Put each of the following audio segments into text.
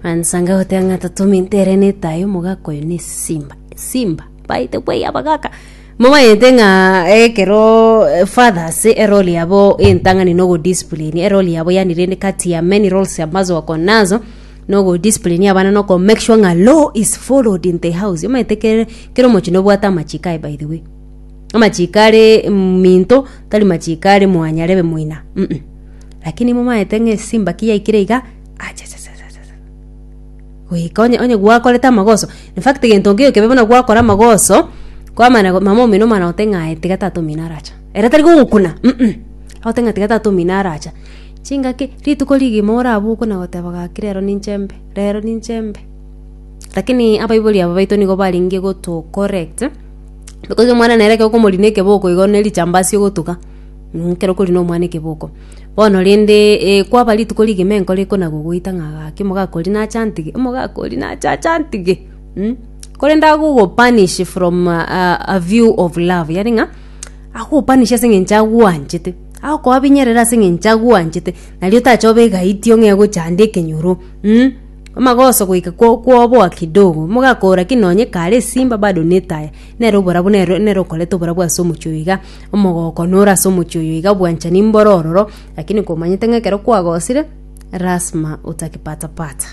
Ansa ngagoteba ng'a tatome ntere netae omogaka oyo na esimba esimba baete bwai abagaka momanyete ng'a ekero eh, fathers eroli yabo entang'ani na ogodiscipline eroli yabo yani rende kati ya many roles ambazo wako nazo na ogodiscipline abana na okomake sure ng'a law is followed in the house omanyete kere kera omochie nobwate amachiko aye by the way amachiko are minto tari machiko are mwanyarebe moina mm. Lakini momaete ng'a esimbaki yaikire iga, achachachachacha. Goika onye onye gwakorete amagoso. In fact gento nkeiyo kebe buna gwakora amagoso, kwamana go mama omino omwana ogote ng'a aye tiga tata omino aracha. Ere tari gogokuna, mm. Ogote ng'a tiga tata omino aracha. Chingaki, rituko rigima orabokwe na goteba gaki rero ninche embe, rero ninche embe. Lakini abaibori aba baito nigo barenge gotu correct, because omwana nere ekero okomorina ekeboko igo ne richambasi ogotuga. ekero okori nomwana ekeboko. Bono rende eh kwaba rituko rigima enkoro ekona gogoita ng'a gaki omogaka oria nache antige, omogaka oria nache ache antige mh, korende agogo punish from a view of love yaani ng'a agogo punish ase eng'encho agwanchete, agokoabinyerera ase eng'encho agwanchete, nario otacha obe egaitio ng'a egochande ekenyoro mh, amagoso goika ko koboa kidogo, omogaka oo lakini nonye kare esimba bado netaya, nere oborabu nere nere okoreta oborabu ase omochie oyo iga. Omogooko nore ase omochie oyo iga bwanchani mboro ororo, lakini komanyete ng'a ekero kwagosire, lasima otakipatapata.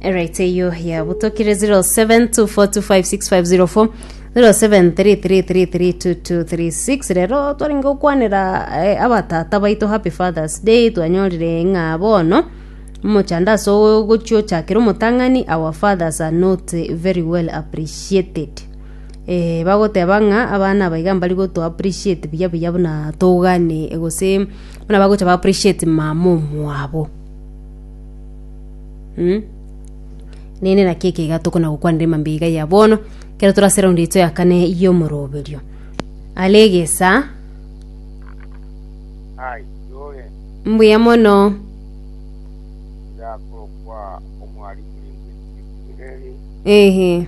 Eraito eyio yabutokire 0724256504 0733332236 rero twarenge gokwanera eh, abatata baito happy fathers day twanyorire ng'a bono omochando ase ogochia ochakera omotang'ani our fathers are not very well appreciated Ee, bagoteba ng'a abana aba iga mbari goto appreciate buya buya buna tougane gose buna bagocha ba appreciate mama omwabo. Mm. Nere naki ekeiga tokona gokwanera emambe iga ya bono, kero tore ase round yaito ya kane y'omoroberio. Are egesa, Hai, yoge, mbuya mono. yakokwa omwari kuri ngwesiki. Ehe.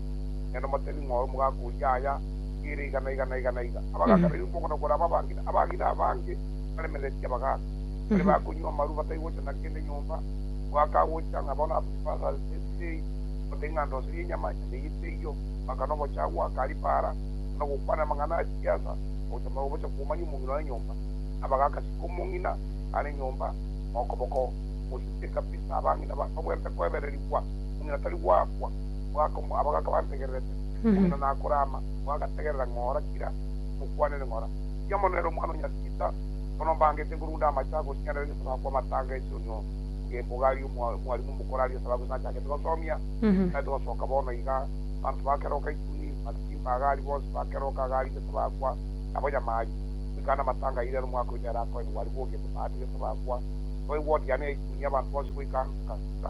Nere omotemi ng'oe omogaka oria aya ere igana igana igana iga. Abagaka baria omogoko na koraba abang'ina, abang'ina abange baremeretie abagaka. Baria bakonywa amaru bataigocha na kende nyomba, omogaka agocha ng'a bono abuge pasa ase esegi, omote ng'a ndoserie enyama, enyama eye teiyo, omogaka nogocha agwo akari paara, na gokwana amang'ana a chigiasa, ogocha magega obocha komanyia omong'ina one nyomba. Abagaka siko omong'ina are nyomba okoboko, ogocha ase ekabisa abang'ina bane obw'empeka oebererigwa, omong'ina tari goakwa. abo gakabantegererete, omong'ina nakorama, nigo agategerera ng'ora kira mokwanere ng'ora, Tiga mono ere Omwana o Nyaritiita, bono mbangete nkorunda amache agochianera egesaku akwo amatanga esionyo bw'embogo aria omwarimu omokoro aria esababu ng'a nchagete gosomia, tari togosoka bono iga, abanto bakeroka ituni, masimba aga aria bonsi bakeroka iga aria egesaku akwa, nabo nyama aria, goika aane amatanga airere omwaka oyo nere akoe nigwo aria bwogiete baate egesaku akwa, nigo aigwa odiana ya ituni y'abanto bonsi goika nka.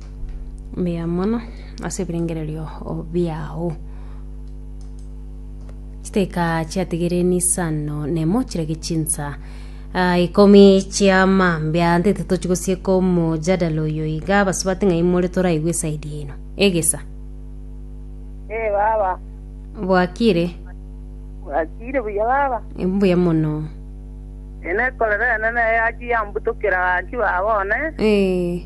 mbuya mono ase ebirengererio biao. Chidakika chiatigere nisano nemo chirage chinsa ah, ikomi chia mambia ntete tochi gosieka omojadala oyo iga abasubati ng'ai more toraigwe esaidi eno egesa Eh, baba. bwakire Wakire buya baba. mbuya mono Ene korera enene yaki yambutokera gaki baba one. Eh,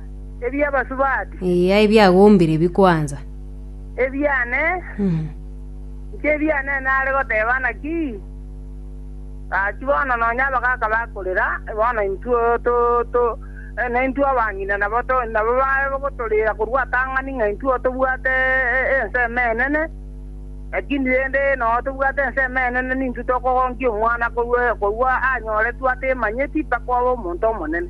ebi'abasubati. Eya ebiagombire bikwansa. Ebiane. Inche ebiane nare goteba naki? Gaki bono nonya abagaka bakorera, bono intwe to, na intwe abang'ina nabo to, nabo bagotorera korwa atang'ani ng'a intwe tobwate ensemo enene. Lakini rende noo tobwate ensemo enene nintwe tokogonkia omwana korwa anyoretwe atemanyeti mpaka obe omonto omonene.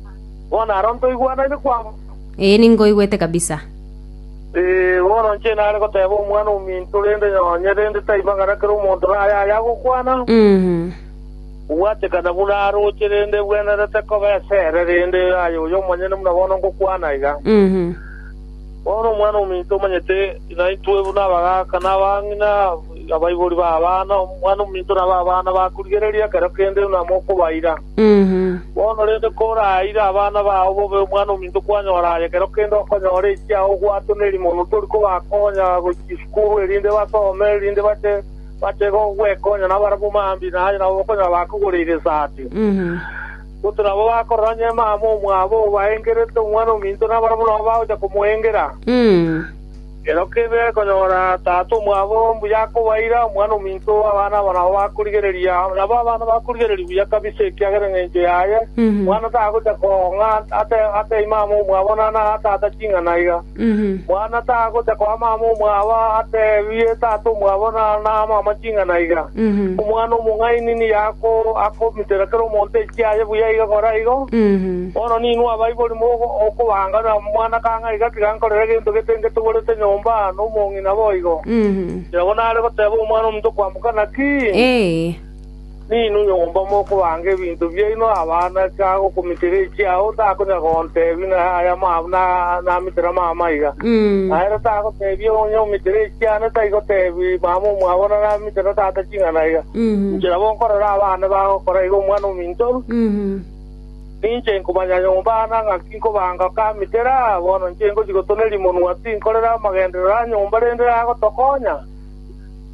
Bono aro ntoigwanaine kwabo? Ee, ninkoigwete kabisa. Ee, bono inche nare goteba omwana ominto, rende nonye rende taiba ng'ana kera omonto naye aye agokwana, Mhm. Obwatekana buna aroche, rende ebwenerete koba esere, rende aye oyo omonyene buna bono ngokwana iga. Mhm. Bono nomwana omominto omanyete naintwe buna abagaaka na abang'ina, abaibori b'abana. Omwana omominto nabe abana bakorigereria ekero kende buna mokobaira. Bono rende koraire abana bao bobe omwana omominto kwanyora aye ekero kende okonyora ekiagera ogwatoneri mono tori kobakonya gochia isukuru erinde basome, erinde bache bache gwekonya nabarabwo mambia naye nabo okonyora bakogoreire esati. Gototo nabo bakorora onye mama omwabo obaengerete omwana‐o‐minto nabarabwo nabo bagocha komoengera. Ero kende gekonyora tata omwabo mbuya akobaira omwana‐o‐minto, abana abo nabo bakorigereria. Nabo abana bakorigereria buya kabisa ekiagera engencho yaye omwana tagocha koong'a atebi mama omwabo, nana tata ching'ana iga. Mwana tagocha koa mama omwabo ateebie tata omwabo na mama ching'ana iga. Omwana omong'aini nigo akomitera kera omonto ekiaye buya iga kora igo. Bono ninwe abaibori mokobanganera omwana kang'ai iga tiga nkorera egento gete ngetogorete nyomba nomong'ina boigo, kera bono are goteeba omwana ominto kwamboka naki? Ninwe nyomba mokobanga ebinto biaino abana ase aa gokomitera echiao, takonyara gontebia ng'a aya namitera mama aiga. Na ere tagotebia onye omitera echiane, taigotebia mama omwabo ng'a namitera tata ching'ana aiga. Inche nabo nkorera abana bagokora igo omwana ominto orue. Ninche nkomanya nyomba aane na ng'aki nkobanga okamitera. Bono inche ngochia gotoneria monwa, tinkorera amagenderero a nyomba rende agotokonya.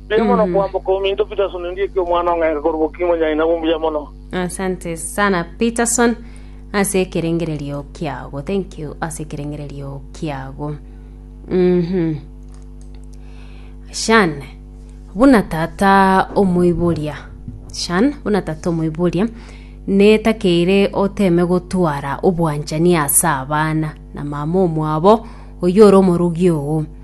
Mbuya mono Mhm. kwamboka ominto Peterson Ondieki omwana ong'aika korwa Bokinyi Monyaina bo mbuya mono. asante sana peterson ase ekerengererio kiago thank you ase ekerengererio kiago Mhm. shan buna tata omoiboria shan buna tata omoiboria netakeire oteme gotwara obwanchani ase abana na mama omwabo oyore omorogi oo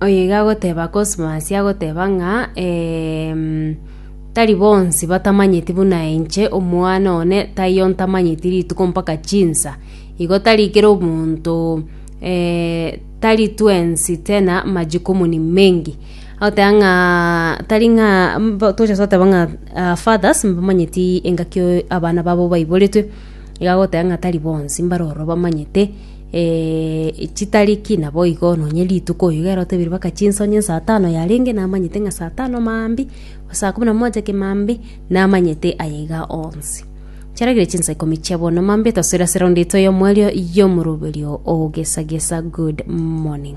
Oyoiga agoteba Cosmas agoteba ng'a tari bonsi batamanyeti buna inche omwana one taiyo ntamanyeti rituko mpaka chinsa. Igo tari kera omonto tari twensi tena majukumu ni mengi. Agoteba ng'aa tari ng'aa toche goteba ng'a fathers mbamanyeti engaki abana babo baiboretwe. Iga agoteba ng'a tari bonsi mbare ororo bamanyete. Ee, chitariki naboigo nonye rituko iga ero tobeire baka chinsonye saa tano yarenge namanyete ng'a saa tano maambbi, saa kumi na moja kemaambbi, namanyete aya iga onsi. Chiaragire chinsa ikomi chia bono maambbi tosoera sound ito y'omwerio y'omoroberio o Gesa Gesa Good Morning.